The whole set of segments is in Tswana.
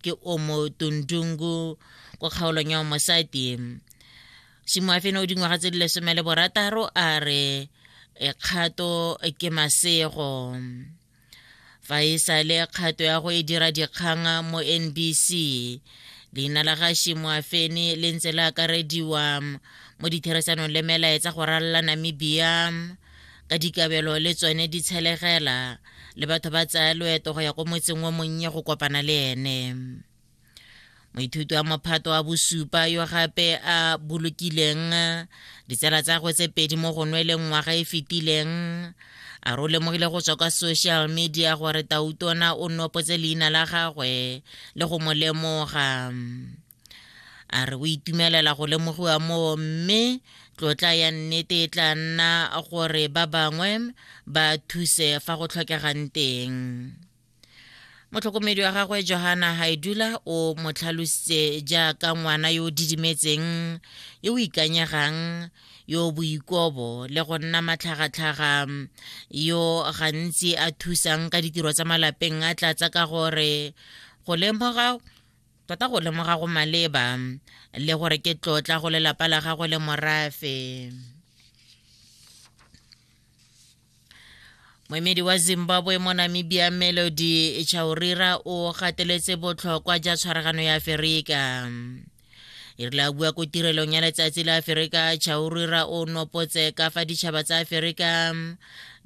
ke o mo tundungu kwa kgaolong ya mosadi simoafene o dingwaga tse di lesome le borataro a re kgato ke masego fa e sa le kgato ya go e dira dikgang mo nbc leina la ga shimoafene le ntse le akarediwa mo ditheresanong le melaetsa go ralala namibia ka dikabelo le tsone di tshelegela le batho ba tsaya loeto go ya ko motseng o monnye go kopana le ene moithuti wa mophato wa bosupa yo gape a bolokileng ditsela tsa gwe tse pedi mo go nweleng ngwaga e fetileng a re o lemogile go tswa kwa social media gore tautona o nopotse leina la gagwe le go mo lemoga a re o itumelela go lemogiwa moo mme tlotla ya nnete e tla nna gore ba bangwe ba thuse fa go tlhokegang teng motlhokomedi wa gagwe johana haidula o mo tlhalositse jaaka ngwana yo o didimetseng yo o ikanyegang yo boikobo le go nna matlhagatlhaga yo gantsi a thusang ka ditiro tsa malapeng a tlatsa ka gore go lemoga Tota go lemoga go maleba le gore ke tlotla go lelapa la gagwe le morafe. moemedi wa zimbabwe mo namibia melody chaurira o gateletse botlhokwa ja tshwaragano ya aferika e rile a bua ko tirelong ya letsatsi la aferika chaurira o nopotse ka fa ditšhaba tsa aferika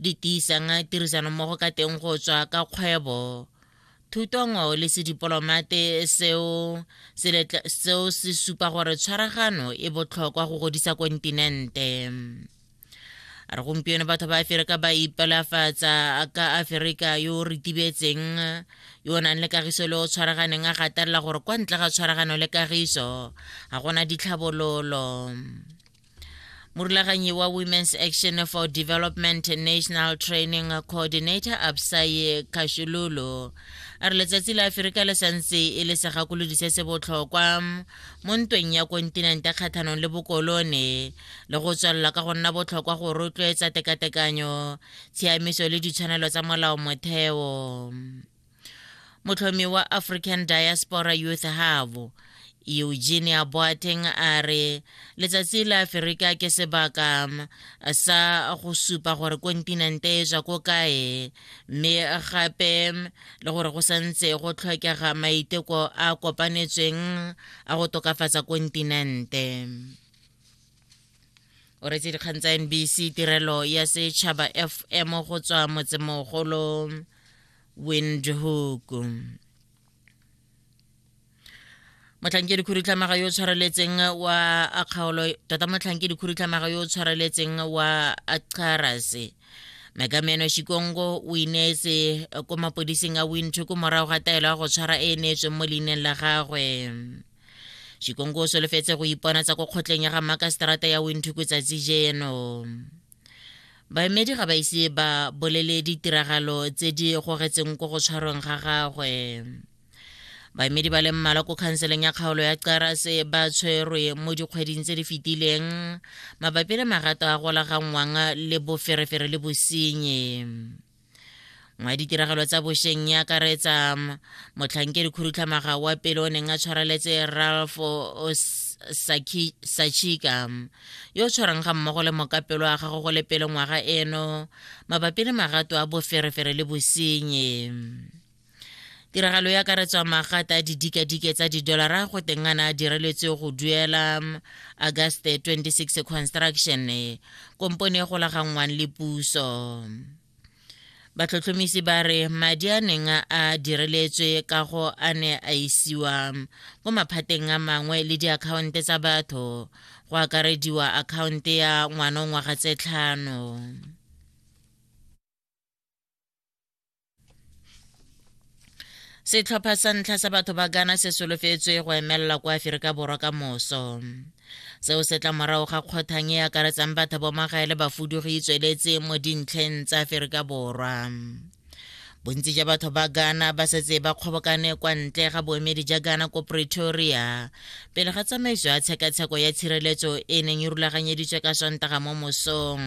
di tiisang tirisanommogo ka teng go tswa ka kgwebo thutongo le sedipolomate seo seo se supa gore tshwaragano e botlhokwa go godisa kontinente re gompieno batho ba aferika ba ipelafatsa ka aferika yo o ritibetseng yo o nang le kagiso le o tshwaraganeng a gatelela gore kwa ntle ga tshwaragano le kagiso ga gona ditlhabololo morulaganyi wa women's action for development national training coordinator absaye kashululu a re letsatsi la aferika le santse e le segakolodi se se botlhokwa mo ntweng ya kontinente kgatlhanong le bokolone le go tswelela ka go nna botlhokwa go rotloetsa tekatekanyo tshiamiso le ditshwanelo tsa molao motheo motlhomi wa african diaspora youth havo eugenia boateng a re letsatsi la aferika ke sebaka um, sa go supa gore kontinente e ja ko kae mme gape um, le gore go santse go tlhokega maiteko a kopanetsweng a go tokafatsa kontinente o retse dikgang tsa nbc tirelo ya setšhaba fm go tswa motsemogolo windhoek motlhankedi khudutlhamaga yo o tshwareletseng wa akgaolo tota motlhankedi khudutlhamaga yo o tshwareletseng wa acharase mekameno shikongo o ineetse ko mapodising a windhoek morago ga taelo ya go tshwara e e neetsweng mo leineng la gagwe shikongo o solofetse go ipona tsa ko kgotleng ya ga makaseterata ya winthuku tsatsi jeno baemedi ga ba ise ba bolele ditiragalo tse di gogetseng ko go tshwarweng ga gagwe baemedi ba le mmalwa ko khanseleng ya kgaolo ya qarase ba tshwerwe mo dikgweding tse di fetileng mabapi le magato a golaganngwang le boferefere le bosenye mwa ditiragalo tsa bosheng ya akaretsa motlhankedi khudutlhamaga wa pele o neng a tshwareletse ralph sachika yo tshwarang ga mmogo le mokapelo a gago go le pele ngwaga eno mabapi le magato a boferefere le bosenye tiragalo ya karetswa magata a didikadike tsa didolara go tengana a direletswe go duela mm, august 26 construction e, kompone e golaganngwang le puso batlhotlhomisi ba re madi a neng a direletswe ka go a ne a isiwa mm, ko maphateng a mangwe le diakhaonte tsa batho go akarediwa akhaonte ya ngwana ngwaga tse tlhano setlhopha sa ntlha sa batho ba gana se solofetswe go emelela kwa aferika borwa ka moso seo se tla morago ga kgothang e akaretsang batho bomagae le bafudugi e tsweletse mo dintlheng tsa aferika borwa bontsi jwa batho ba ghana ba setse ba kgobokane kwa ntle ga boemedi jwa ghana ko pretoria pele ga tsamaiso ya tshekatsheko ya tshireletso e neng e rulaganyeditswe ka sontaga mo mosong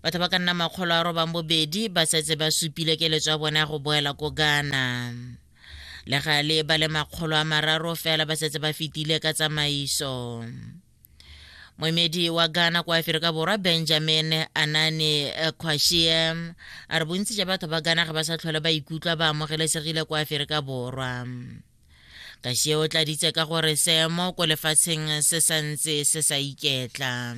batho ba ka nna makgolo a robang bobedi ba setse ba supile keletso ya bone ya go boela ko ghana le gale ba le makgolo a mararo fela ba setse ba fetile ka tsamaiso moemedi wa ghana kwa aferika borwa benjamin anane quashie a re bontsi ja batho ba ghana ga ba sa tlhole ba ikutlwa ba amogelesegile kwa aferika borwa kashie o tladitse ka gore seemo ko lefatsheng se santse se sa iketla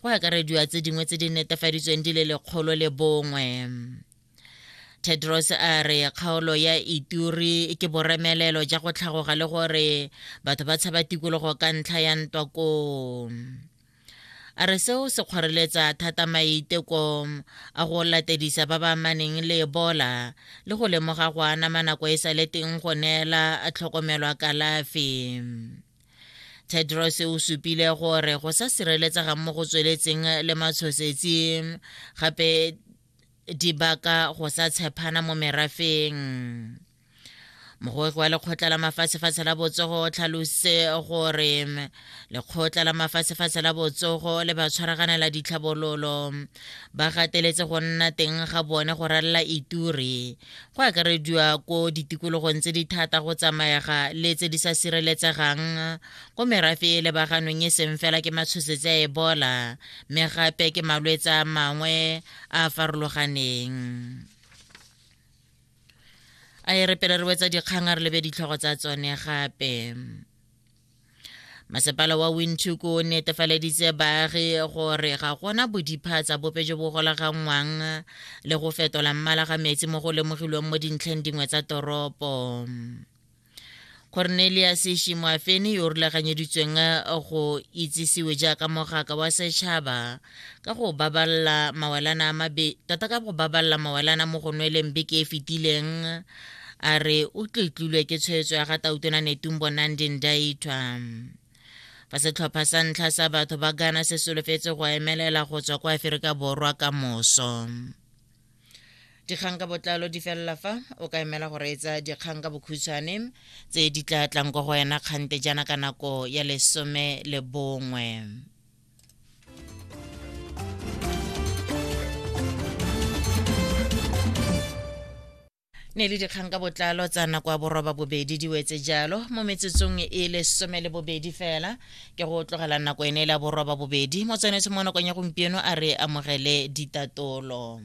go akarediwa tse dingwe tse di netefaditsweng di le lekgolo le bongwe tedros a re kgaolo ya ituri ke boremelelo ja go tlhagoga le gore batho ba tshaba tikologo ka ntlha ya ntwa koo a re seo se kgoreletsa thata maiteko a go latedisa ba ba maneng le ebola le go lemoga go anama nako e sa le teng go neela tlhokomelwa kalafi tedros o supile gore go sa sireletsega mo go tsweletseng le matshosetsi gape di baka go sa tshepana mo merafeng mogogi wa lekgotla la mafatshefatshe la botsogo o tlhalose gore lekgotla la mafatshefatshe la botsogo le ba tshwaraganela ditlhabololo ba gateletse go nna teng ga bone go ralela ituri go akarediwa ko ditikologong tse di thata go tsamaega le tse di sa sireletsegang ko merafe e lebaganong e seng fela ke matshosetsi a ebola mme gape ke malwetse a mangwe a a farologaneng a e re pele re wetsa dikgang a re lebe ditlhogo tsa tsone gape masepala wa windhoek o netefaleditse baagi gore ga gona bodipha tsa bope jo bo golaganngwang le go fetola mmala ga metsi mo go lemogilweng mo dintlheng dingwe tsa toropo cornelius shimoafeni yo rulaganyeditsweng go itsisiwe jaaka mogaka wa setšhaba ka go baballa mawelana a mabe tota ka go baballa mawelana mo go nweleng beke e fetileng a re o tletlilwe ke tshwetso ya ga tautona netumbo nandi ndaithwa fa setlhopha sa ntlha sa batho ba gana se solofetse go emelela go tswa kwa aferika borwa ka moso dikgang ka botlalo di felela fa o ka emela go reetsa dikgang ka bokhutshwane tse di tla tlang kwa go wena kgante jaana ka nako ya lesome le bongwe ne le dikgang ka botlalo tsa nako ya boroba bobedi di wetse jalo mo metsotsong e le some le bobedi fela ke go tlogela nako ene e le ya boroba bobedi mo tshwanetse mo nakong ya gompieno a re amogele ditatolo